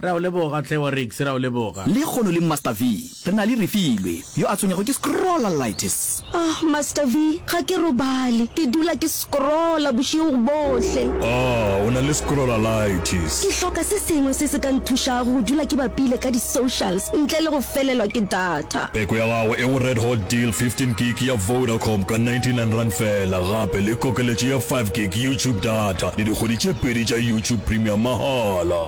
Re a o leboga, Tlhe wa Riggs, re a o leboga. Lehono le Master V, re na le Refilwe, yo a tshwenyego ke scrollalitis. Oh, Master V, ga ke robale, ke dula ke scrolla bošego bohle. Oh, o na le scrollalitis. Ke hloka se sengwe se se ka nthušago go dula ke bapile ka di-socials ntle le go felelwa ke data. Peko ya gago e go Red Hot Deal, 15 gig ya Vodacom ka 99 rand fela, gape le kokeletšo ya 5 gig YouTube data le dikgwedi tše pedi tša YouTube Premium mahala.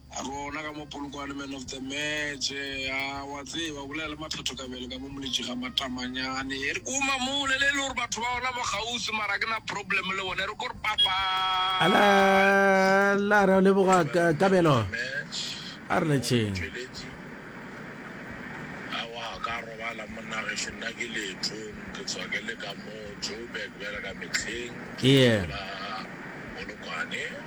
Rona ka mo Polokwane man of the match a wa tseba o bolela le mathatho ka bjale ka mo moletši ga matamanyane e re ko mamole le e le gore batho ba ona mo gausi mara ke na problem le bone re ko re papa ala la ra le boga ka kabelo a re letšeng a wa ka robala monage hle nna ke letho ke tswa ke le ka mo Joburg bjale ka metlheng yeah Polokwane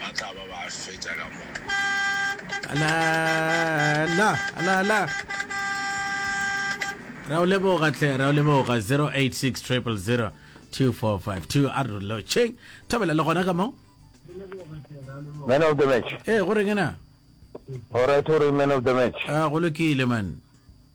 ba tla ba ba fetša ka moka. Alala, alala. Ra o leboga tle, ra o leboga 086 000 2452 a re lotšheng. Thobela le gona ka mo. Man of the match. Eh, go reng na? All right, o re man of the match. Ah, go lokile man.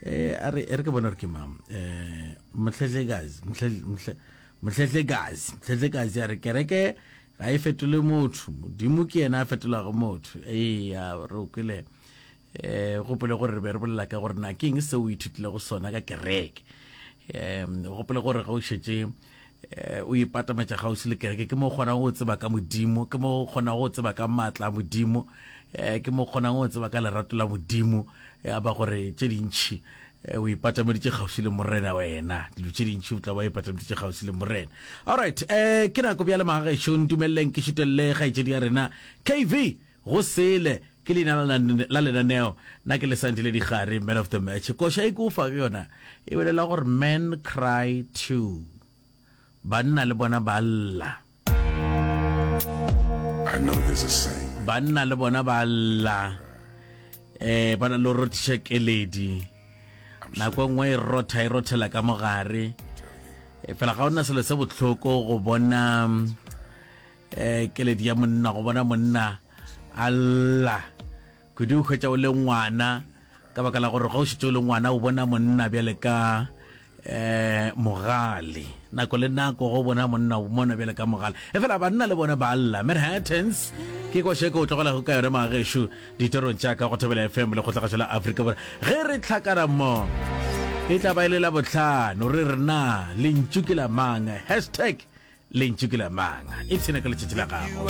eh a re re ke bona re ke mang eh mhlehle guys mhlehle mhlehle guys mhlehle guys ya re kereke ga e fetole motho modimo ke yena a fetolago motho ee ya re o kwele eh gopole gore re be re bolela ka gore na ke eng se o ithutilego sona ka kereke um gopole gore ga o šetse Eh, o ipatametša gausi le kereke ke mo kgonang go tseba ka modimo ke mo kgonang go tseba ka maatla a modimo eh, ke mo kgonang go tseba ka lerato la modimo eh, a ba gore tše dintšhi o ipatameditše kgausi le morena wena dilo tše dintšhi o tla ba ipatameditše kgausi le morena allright um ke nako bja le magagešong dumeleleng ke šutelele kgaetšedi ya rena kv Go sele, ke leina la na, la lenaneo, na ke lesantiledigare, man of the match. Koša e ke o fa yona e bolela gore men cry too, banna le bona ba lla. I know there's a saying. Banna le bona ba lla. Eh, ba na le rothiša keledi. Nako nngwe e rotha e rothela ka mogare. E fela ga ona selo se botlhoko go bona eh keledi ya monna go bona monna alla kudu o hwetša o le ngwana ka baka la gore ga o šitse o le ngwana o bona monna bjale ka eh mogale nako le nako go bona monna o mona bjale ka mogale e fela banna le bone ba alla manhattans ke košeke o tlogelago ka yone magesho Ditorong tša ka go Thobela FM le Kgotlagatšo la Afrika Borwa. Ge re hlakana mmo, e tla ba e le la bohlano, re re na lentšu ke la mang, hashtag lentšu ke la mang, ipshine ka letšatši la gago.